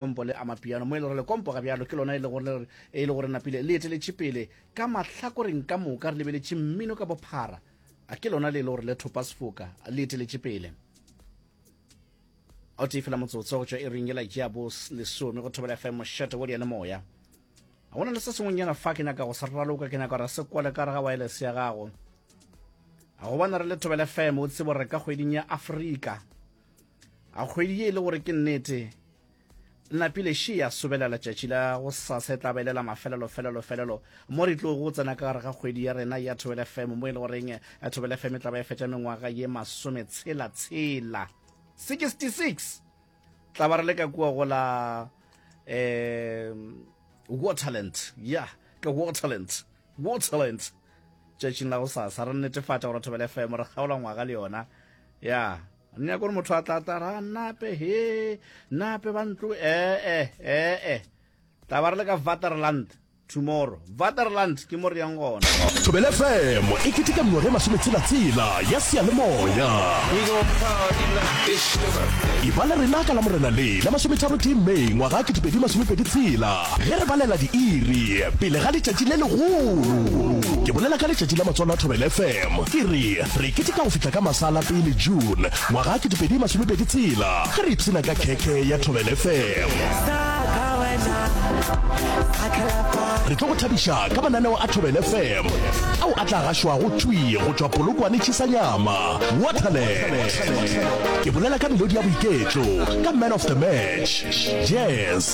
Lekompo le Amapiano, mo e le gore lekompo ga bjalo ke lona e le gore e le gore napile le eteletše pele ka mahlakoreng ka moka re lebeletše mmino ka bophara a ke lona le e le gore le thopa sefoka le eteletše pele o tee fela motsotso go tšwa e reng ela jea bo lesome go thobela fm mošate wo diane moya ga gona le se sengwenyana fa ke nyaka go se raloka ke nyaka gore se kwale ka re ga wireless ya gago ga go bana re le thobela fm o tsebo re ka kgweding ya afrika a kgwedi ye e le gore ke nnete napile she ya sobelela tšatši la go sase tla belela mafelelo felelo felelo mo re tlo go tsena ka gare ga kgwedi ya rena ya thobele fm mo e le goreng eh, thobele fm e tla ba e fetša mengwaga ye masome tshela tshela 66 tla ba re le ka kua go la um waterland ya yeah, ka waterland Waterlands tšatšing la gosasa re netefatša gore thobela fm re kgaola ngwaga le yona ya re nyaka gore motho a tlata ra nape he nape ba ntlo ee ee tla ba re le ka vaterland tomorrow vaterland ke mo re yang gona thobela fm e keteka mengwaga e masometshelatsela ya seyalemoya e ba le rena ka la morena le la masometharotee may ngwaga a ketepedi masomepedi tshela Ge re balela diiri pele ga letšatši le legolo, ke bolela ka letšatši la Matswalo a Thobela FM, ke re re keteka go fihla ka masala pele June ngwaga 2020 tshela ge re ipshina ka khekhe ya Thobela FM. Re tlo go thabiša ka mananeo a Thobela FM ao a tla gašwago thwi go tšwa Polokwane Chisanyama, Waterland. Ke bolela ka melodi ya boiketlo, ka Man of the Match, Jazz,